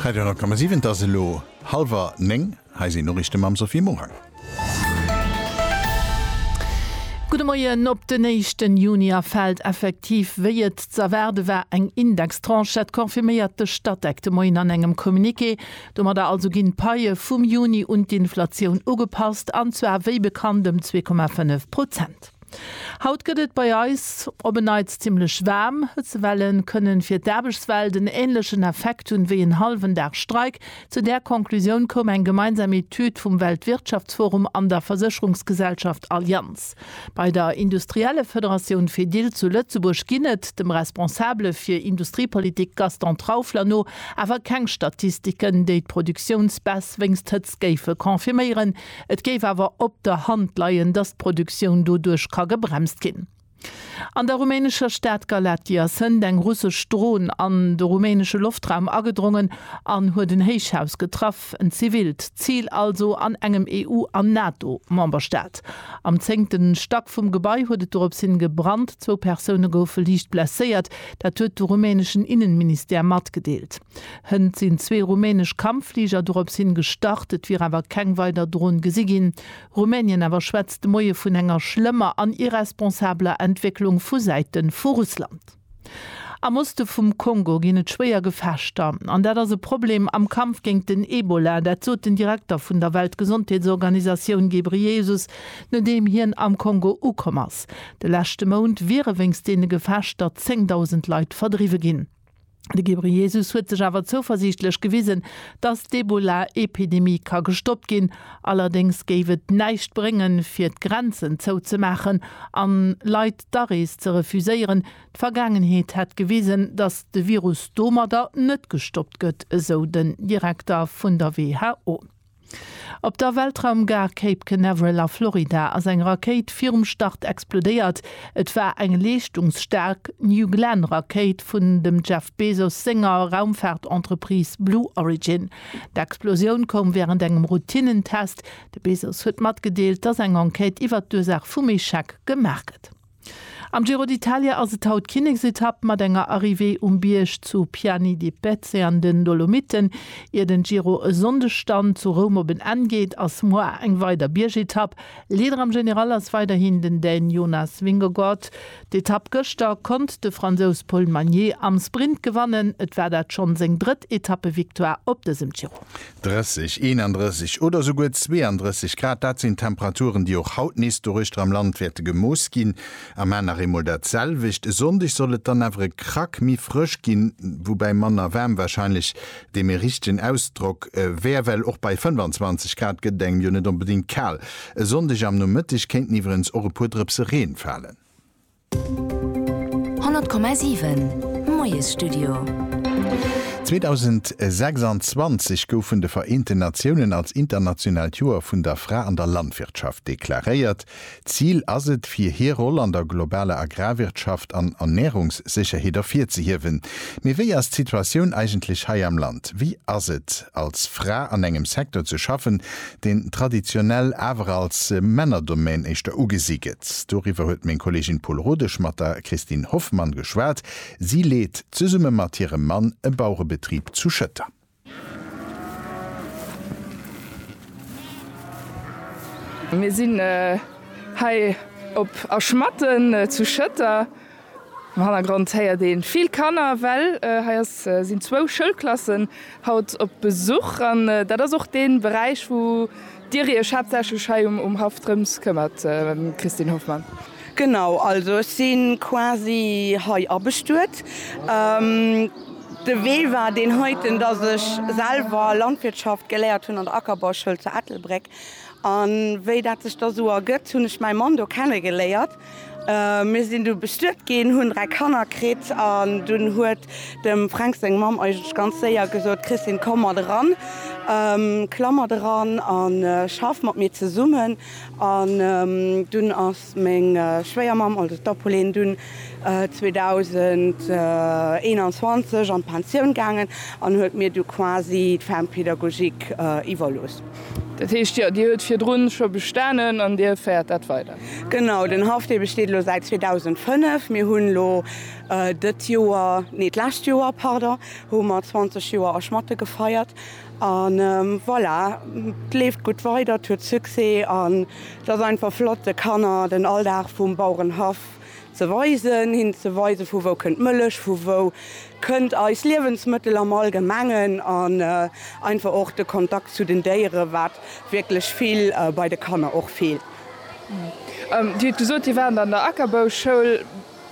Radio 10,7 Et ass elo hallwer néng. Hei sinn d'Noriichte mam Sophie Morang. Gudde Moien. Op den éischten Juni erfält effektiv, wéi et z'erwaarde war, eng Indextranche. Dat confirméiert de Statec de Moien an engem Communiqué. Domadder also ginn d'Paie vum Juni un d'Inflatioun ugepasst, an zwar wéi bekannt ëm zwee Komma fënnef Prozent. Haut gëtt et bei eis op en Neits zimmlech waarm. Hëtzewellen kënnen fir d'Aarbechtswelt en änlechen Effekt hunn wéi en hallwen Dag Streik. Zu där Conclusioun koum eng gemeinsam Etüd vum Weltwirtschaftsforum an der Versécherungsgesellschaft Allianz. Bei der Industriellefederatioun Fedil zu Lëtzebuerg ginn et, dem Responsabele fir Industriepolitik Gaston Traufler no, awer keng Statistiken, déi d'Produktiounsbaisse wéinst Hëtzt. géife confirméieren. Et géif awer op der Hand leien, datt d'Produktioun doduerch ka gebremst ginn. An der rumänescher Stad Galatia sënnt eng russesch Dron an de rumänesche Loftraum agedrongen an huet en Héichhaus getraff, en zivilt Zil also an engem EU an NATO-Memberstaat. Am zéngte Stack vum Gebai huet et dorops hin gebrannt, zwou Persoune goufe liicht blesséiert, dat huet de rumäneschen Innenministère matgedeelt. Hënt sinn zwee rumänesch Kampffliger dorops hin gestart, et wier awer keng weider Dron gesi ginn. Rumänien awer schwätzt de Moie vun enger schlëmmer an irresponsabler Entwécklung vu Säite vu Russland. Am Oste vum Kongo ginn et schwéier Gefechter, an dat ass e Problem am Kampf géint den Ebola. Dat sot den Direkter vun der Weltgesondheetsorganisatioun Ghebreyesus, nodeem hien am Kongo ukomm ass. De leschte Mount wiere wéinst deene Gefechter 10.000 Leit verdriwwe ginn. De Ghebreyesus huet sech awer zouversiichtlech gewisen, datt d'Ebola-Epidemie ka gestoppt ginn. Allerdéngs géif et näischt bréngen, fir d'Grenzen zouzemaachen an Leit d'Arees ze refuséieren. D'Vergaangenheet hätt gewisen, datt de Virus domadder net gestoppt gëtt, esou den Direkter vun der who. Op der Weltraumgare Cape Canaveral a Florida ass eng Rakéit virum Start explodéiert. Et war eng leeschtungsstaark New Glenn Rakéit vun dem Jeff Bezos senger Raumfaart-Entreprise Blue Origin. D'Explosioun koum wärend engem Routinnen-Test. De Bezos huet matgedeelt, dass eng Enquête iwwert d'Ursaach vum Echec gemaach gëtt. Am Giro d'Italia ass et haut d'Kinneksetapp mat enger Arrivée um Bierg zu Piani di Pezze an den Dolomiten. Ier den Giro e Sonndeg dann zu Roum op en Enn geet, ass moar eng weider Biergetapp. Leader am General ass weiderhin den Dän Jonas Vingegaard. D'Etapp gëschter konnt de Fransous Paul Magnier am Sprint gewannen. Et war dat schonn seng drëtt Etappevictoire op dësem Giro. 30, 31 oder esouguer 32 Grad, dat sinn Temperaturen, déi och haut nees doruechter am Land wäerte gemooss ginn. Am Main nach eemol dat selwecht. E Sonndeg soll et dann awer e Krack méi frësch ginn, woubäi manner waarm warscheinlech dee méi richtegen Ausdrock wär, well och bei 25 Grad gëtt et engem jo net onbedéngt kal. E Sonndeg am Nomëtteg kéinten iwwerengs och e puer Drëpse Reen falen. 100,7 Moiesstudio. 2026 gouf vun de Vereenten Natiounen als internationaalt Joer vun der Fra an der Landwirtschaft deklaréiert. Zil ass et, fir hir Roll an der globaler Agrarwirtschaft an Ernärungssécherheet ervirzehiewen. Mee wéi ass d'Situatioun eigentlech hei am Land? Wéi ass et, als Fra an engem Secteur ze schaffen, deen traditionell awer als Männerdomaine éischter ugesi gëtt. Doriwwer huet meng Kollegin Paul Rodesch mat der Christine Hoffmann geschwat. Si leet zesumme mat hirem Mann e Baurebetrib zu Schëtter. Mir sinn hei op A Schmatten zu Schëtter. Am Hannergrond héiert een vill Kanner, well hei ass sinn zwou Schoulklassen haut op Besuch an dat ass och deen Beräich wou dir iech haaptsächlech hei um Haff drëms këmmert Christine Hoffmann. Genau, also ech sinn quasi hei abestuet. De Wee war deen heiten, dass ech selwer Landwirtschaft geléiert hunn an der Ackerbauschoul zu Ettelbréck an wéi dat sech da sou ergëtt hunn ech mäi Mann do kenne geléiert Mir sinn du bestuet ginn, hunn dräi Kanner kritt an dunn huet dem Fränk seng Mamm eigentlech ganz séier gesot, Christine, komm mat eran, klamm mat eran a schaff mat mir zesummen. An dunn ass meng Schwéiermamm, also d'Apolline, dunn 2021 an d'Pensioun gaangen an huet mir du quasi d'Ferme pédagogique iwwerlooss. Dat heescht, jo, Dir huet virdrun scho bestanen an Dir féiert dat weider? Genau, den Haff, dee besteet elo säit 2005. Mir hunn elo dëtt Joer, nee, d'lescht Joer, pardon, hu mer 20 Joer A Schmatte gefeiert. A voilà, 't leeft gutt weider, 't huet Succès an 't ass einfach flott, de Kanner den Alldag vum Bauerenhaff Ze weisen, hinnen ze weisen, vu wou kënnt d'Mëllech, vu wou kënnt eis Liewensmëttel am Allgemengen an einfach och de Kontakt zu den Déieren, wat wierklech vill bei de Kanner och feelt. Dir hutt gesot, Dir waart an der Ackerbauschoul.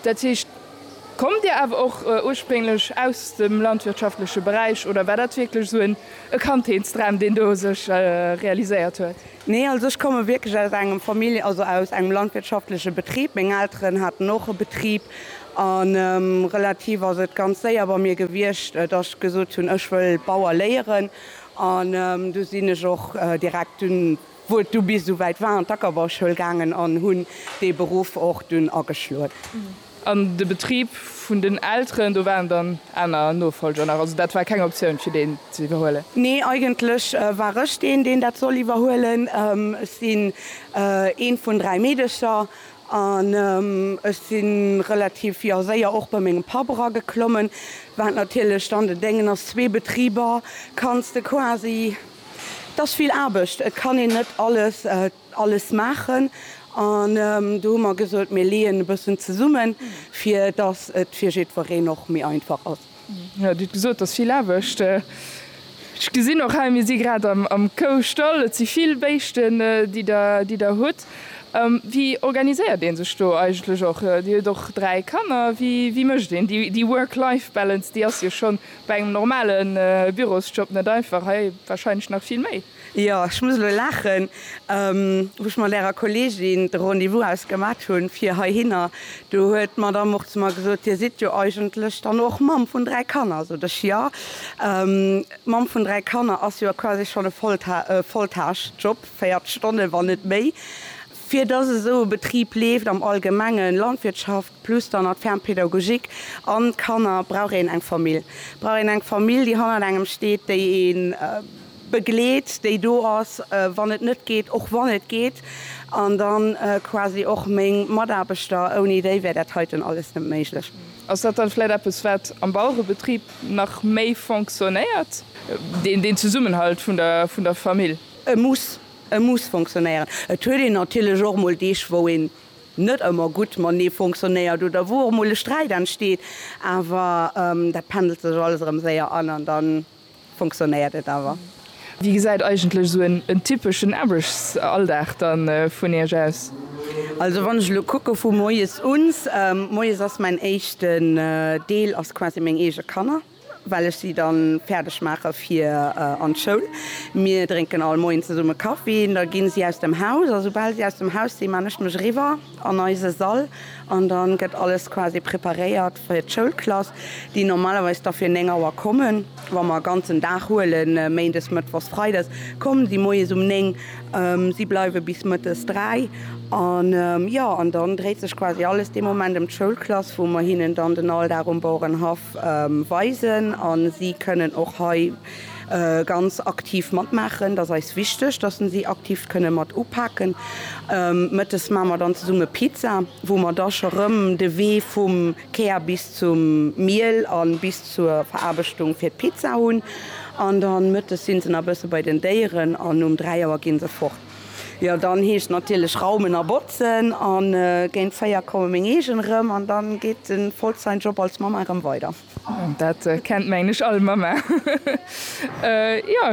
Dat heescht, kommt Dir awer och ursprénglech aus dem landwirtschaftleche Beräich oder war dat wierklech esou e Kandheetsdram, deen do sech realiséiert huet? Nee, also ech komme wierklech aus engem Famili-, also aus engem landwirtschaftleche Betrib. Meng Elteren haten och e Betrib a relativ ass et ganz séier bei mir gewiescht, datt ech gesot hunn, ech wëll Bauer léieren. An du sinn ech och direkt dunn, wou et du bis esou wäit war, an d'Ackerbauschoul gaangen an hunn dee Beruff och dunn ageschloen. An de Betrib vun den Elteren, do waren dann aner Nofolger nach, also dat war keng Optioun fir deen ze iwwerhuelen? Nee, eigentlech war ech deen, deen dat soll iwwerhuelen. Ech sinn eent vun dräi Meedecher an ech si relativ, jo, séier och bei mengem Papp erageklommen, wat natierlech dann den Déngen ass, zwee Betriber kanns de quasi, 't ass vill Aarbecht, et kann een net alles. alles maachen an do hu mer gesot, mir leeën e bëssen zesummen, fir datt et fir jiddwereen och méi einfach ass. Jo, Dir hutt gesot, et ass vill Aarbecht. Ech gesinn och hei, mir si grad am Koustall, et si vill Béischten, déi Der, déi Der hutt. Wéi organiséiert ee sech do eigentlech och? Dir hutt och dräi Kanner. Wéi, wéi mécht een déi Work-Life-Balance? Déi ass jo scho bei engem normale Bürosjob net einfach, hei warscheinlech nach vill méi. Jo, ech muss elo laachen, wou ech mat Ärer Kolleegin de Rendez-vous ausgemat hunn, fir heihinner, do huet d'Madamm och zu mer gesot, Dir sidd jo eigentlech dann och Mamm vun dräi Kanner. Sot ech, Jo, Mamm vun dräi Kanner ass jo quasi schonn e Volltagsjob, 40 Stonne, wann net méi. Fir dass esou e Betrib leeft am Allgemengen, Landwirtschaft, plus dann nach d'Ferme pédagogique an d'Kanner, brauch een eng Famill, brauch een eng Famill, déi hannert engem steet, déi ee begleet, déi do ass, wann et net geet, och wann et geet. An da quasi och meng Mataarbechter, ouni déi wär dat heiten alles net méiglech. Ass dat dann vläit eppes, wat am Bauerebetrib nach méi fonctionnéiert, deen Zesummenhalt vun der Famill? E muss, e muss fonctionnéieren. Et huet een natierlech och mol Deeg, wou een net ëmmer gutt matenee fonctionnéiert oder wou och emol e Sträit entsteet, awer dat pendelt sech alles erëm séier an an da fonctionnéiert et awer. Wéi gesäit eigentlech esou en typeschen Aarbechtsalldag da vun Iech aus? Also wann ech elo kucke vu moies un, moies ass mäin éischten Deel ass quasi meng eege Kanner, well ech si dann fäerdeg maache fir an d'Schoul. Mir drénken all Moien zesumme Kaffi, da ginn si aus dem Haus a soubal si aus dem Haus sinn, man ech mech eriwwer an eise Sall an dann gëtt alles quasi preparéiert fir d'Schoulklass, déi normalerweis da fir 9 Auer kommen, wa mer ganzen Dag huelen, Méindes, Mëttwochs, Freides, kommen si Moies um 9, si bleiwe bis Mëttes 3 an jo, an dann dréit sech quasi alles dee Moment em d'Schoulklass, wou mer hinnen dann den Alldag um Bauerenhaff. Weisen an si kënnen och hei ganz aktiv matmaachen. Et ass eis wichteg, dass se si aktiv kënne mat upaken. Mëttes maache mer dann zesumme Pizza, wou mer da scho rëm de Wee vum Kär bis zum Miel a bis zur Veraarbechtung fir d'Pizza hunn. An dann mëttes si se nach e bësse bei den Déieren an um dräi Auer gi se fort. Jo dann heescht natierlech raumen a botzen an géint 4 kommen meng eegen erëm an dann geet den Vollzeit Job als Mamma erëm weider. Dat kennt mengen ech all Mamma. Jo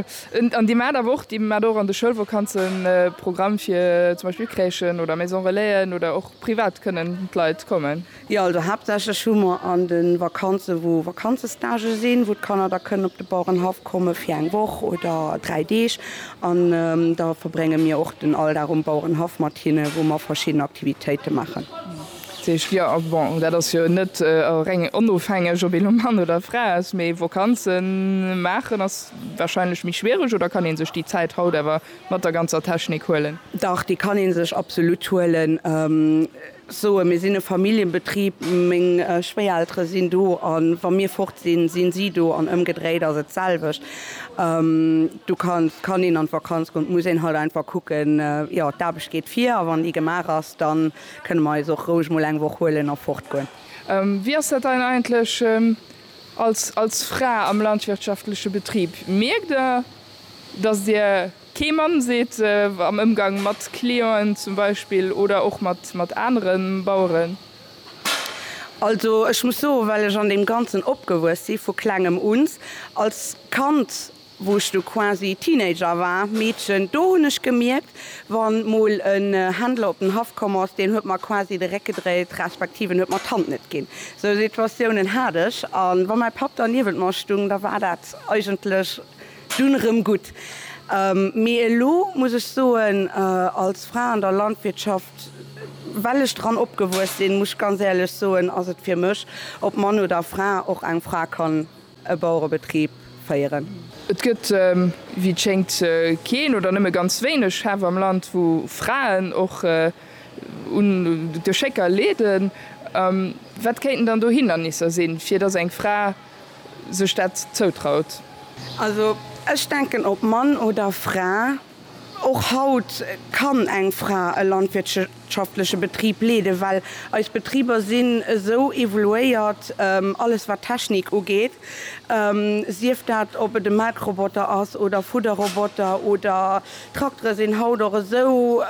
an dir maat awer och, dir maat och an de Schoulvokanzen Programm fir zum Beispill Crèchen oder Maison Relaisen oder och privat kënnen d'Leit kommen? Jo, also haaptsächlech hu mer an de Vakanze wou Vakanzestage sinn, wou d'Kanner da kënnen op de Bauerenhaff komme fir eng Woch oder dräi Deeg an da verbrénge mir och den Alldag um Bauerenhaff mat hinne wou mer verschidden Aktivitéite maachen. Dat heescht, jo, bon dat ass jo net reng onofhängeg ob ee lo Mann oder Fra ass, mee Vakanze maachen ass warscheinlech méi schwiereg oder kann ee sech déi Zäit haut awer mat der ganzer Technik huelen? Dach, déi kann ee sech absolut huelen. Soen, Mir sinn e Familljenbetrib, meng Schwéiereltere sinn do a wa mir fort sinn, sinn si do an ëmgedréit ass et d'selwecht. Do kann kann een an d'Vakanz goen, et muss een halt einfach kucken, jo d'Aarbecht geet vir a wann déi gemaach ass, da kënne mer eis och roueg mol eng Woch huelen a fort goen. Wéi ass dat dann eigentlech als als Fra am landwirtschaftleche Betrib? Mierkt Der, datt Dir Kee Mann seet am Ëmgang mat Clienten zum Beispill oder och mat anere Baueren. Also ech muss soen, well ech an deem Ganzen opgewuess si vu Klengem un, als Kand, wou ech du quasi Teenager war, Meedchen, do hunn ech gemierkt, wa mol en Händler op den Haff komm ass, deen huet mer quasi de Réck gedréit, respektiv en huet mer d'Hand net ginn. Esou Situatiounen hat ech. A wa mäi Papp derniewent mer stung, da war dat eigentlech. Dunn erëm gutt. Mee elo muss ech soen, als Fra an der Landwirtschaft, well ech dran opgewuess sinn, muss ech ganz éierlech soen, ass et fir mech, ob Mann oder Fra, och eng Fra kann e Bauerebetrib féieren. Et gëtt, wéi et schéngt, keen oder nëmme ganz wéineg Schäff am Land, wou Fraen och un Geschécker leeden. Wat kéinten dann do Hindernisser sinn, fir dass eng Fra sech dat zoutraut. Also ech denken ob Mann oder Fra, och haut kann eng Fra e landwirtschaftleche Betrib leeden, well eis Betriber sinn esou evoluéiert, alles wat Technik ugeet, sief dat ob et e Melkroboter ass oder Fudderroboter oder Trakteren sinn haut och esou,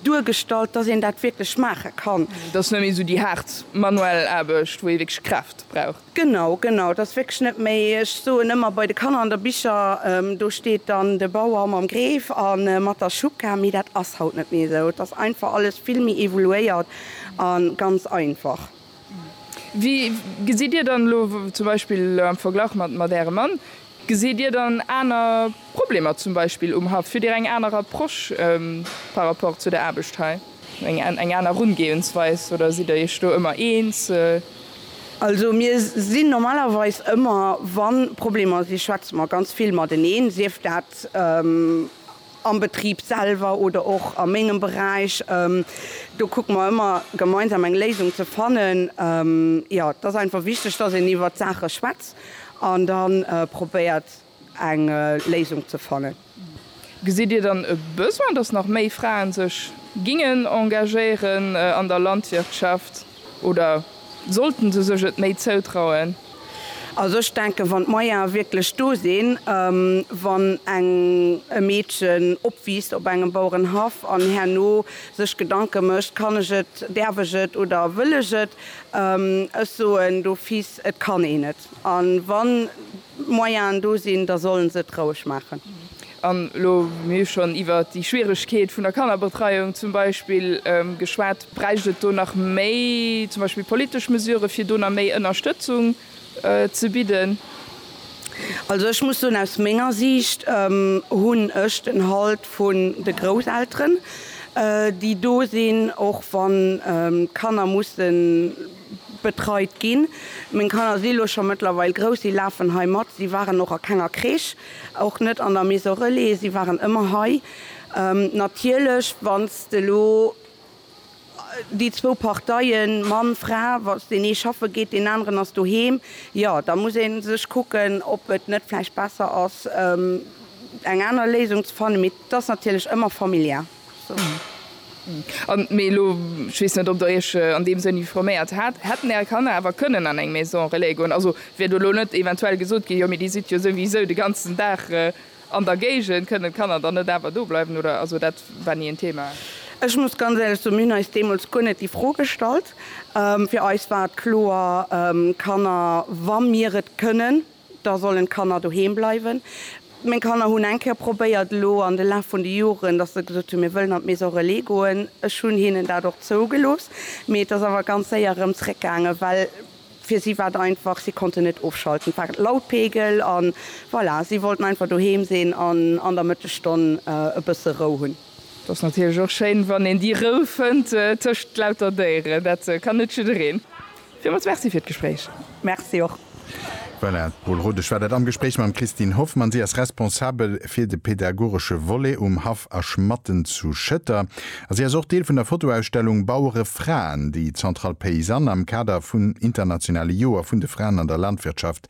Duergestallt, dass een dat wierklech maache kann. Et ass net méi esou déi haart manuell Aarbecht, wou ee wierklech Kraaft brauch. Genau, genau. Et ass wierklech net méi, ech soen ëmmer bei de Kanner an der Bicher, do steet dann de Bauer mam Greef a mat der Schucka, mee dat ass haut net méi esou. Et ass einfach alles vill méi evoluéiert a ganz einfach. Wéi gesitt Dir dann elo zum Beispill am Verglach mat Ärem Mann, gesitt Dir dann aner Problemer zum Beispill um Haff? Hutt Dir eng aner Approche par rapport zu der Aarbecht hei, eng aner Erungeeënsweis oder sidd Der Iech do ëmmer eens? Also mir sinn normalerweis ëmmer, wa Problemer si, schwätze mer ganz vill mateneen, sief dat, am Betrib selwer oder och a mengem Beräich, do kucke mer ëmmer gemeinsam eng Léisung ze fannen. Jo, et ass einfach wichteg, dass een iwwert d'Saache schwätzt an da probéiert, eng Léisung ze fannen. Gesitt Dir dann e Besoin, dass nach méi Frae sech géingen engagéieren an der Landwirtschaft? Oder sollten se sech et méi zoutrauen? Also ech denken, wann d'Moyene wierklech do sinn, wann eng e Meedchen opwiisst op engem Bauerenhaff an herno sech Gedanke mécht, kann ech et, däerf ech et oder wëll ech et? Ech soen d'office, et kann een et. A wann Moyenen do sinn, da sollen se et roueg maachen. An elo hunn mir schonn iwwert déi Schwieregkeet vun der Kannerbetreiung zum Beispill geschwat. Bräicht et do nach méi zum Beispill politesch Mesurë fir do nach méi Ënnerstëtzung ze bidden? Also ech muss soen, aus menger Siicht hunn ech den Halt vun de Grousselteren, déi do sinn, och wann d'Kanner mussen betreit ginn. Meng Kanner si elo scho mëttlerweil grouss, si lafen hei mat, si waren och a kenger Crèche, och net an der Maison Relais, si waren ëmmer hei. Natierlech, wa s de elo déi zwou Parteien, Mann, Fra, wa s deen ee schaffe geet, deen aneren ass doheem, jo da muss ee sech kucken, ob et net vläicht besser ass, eng aner Léisung ze fannen. Mee 't ass natierlech ëmmer familiär. Mee elo, ech weess net, ob Der Iech an deem Sënn informéiert hat, Hätten Är Kanner awer kënnen an eng Maison relais goen? Also, wier do elo net eventuell gesot ginn, Jo, mee déi sidd jo souwisou de ganzen Dag an der Géigend, kënnen d'Kanner dann net awer dobleiwen? Oder, also dat war ni en Thema. Ech muss ganz éierlech soen, mir hunn eis deemools guer net déi Fro gestallt. Fir eis war et kloer, Kanner, wa mir et kënnen, Da sollen d'Kanner doheem bleiwen. Meng Kanner hunn eng Kéier probéiert elo an de Laf vun de Joren, datt se gesot hunn, mir wëllen an d'Maison relais goen. Ech hunn hinnen dat och zougelooss, mee et ass awer ganz séier erëm zréckgaangen, well fir si war et einfach, si konnten net ofschalten, et war Lautpegel a voilà, si wollten einfach doheem sinn an an der Mëttesstonn e bësse Rou hunn. Et ass natierlech och schéin, wann een déi Rou fënnt tëscht lauter Déieren, dat kann net jiddereen. Villmools Merci fir d'Gespréich. Merci och. Voilà, d'Paule Rodesch war dat am Gespréich mam Christine Hoffmann. Si ass Responsabel fir de pädagogesche Volet um Haff A Schmatten zu Schëtter a si ass och Deel vun der Fotoausstellung Bauere Fraen, déi d'Centrale Paysanne am Kader vun internationale Joer vun de Fraen an der Landwirtschaft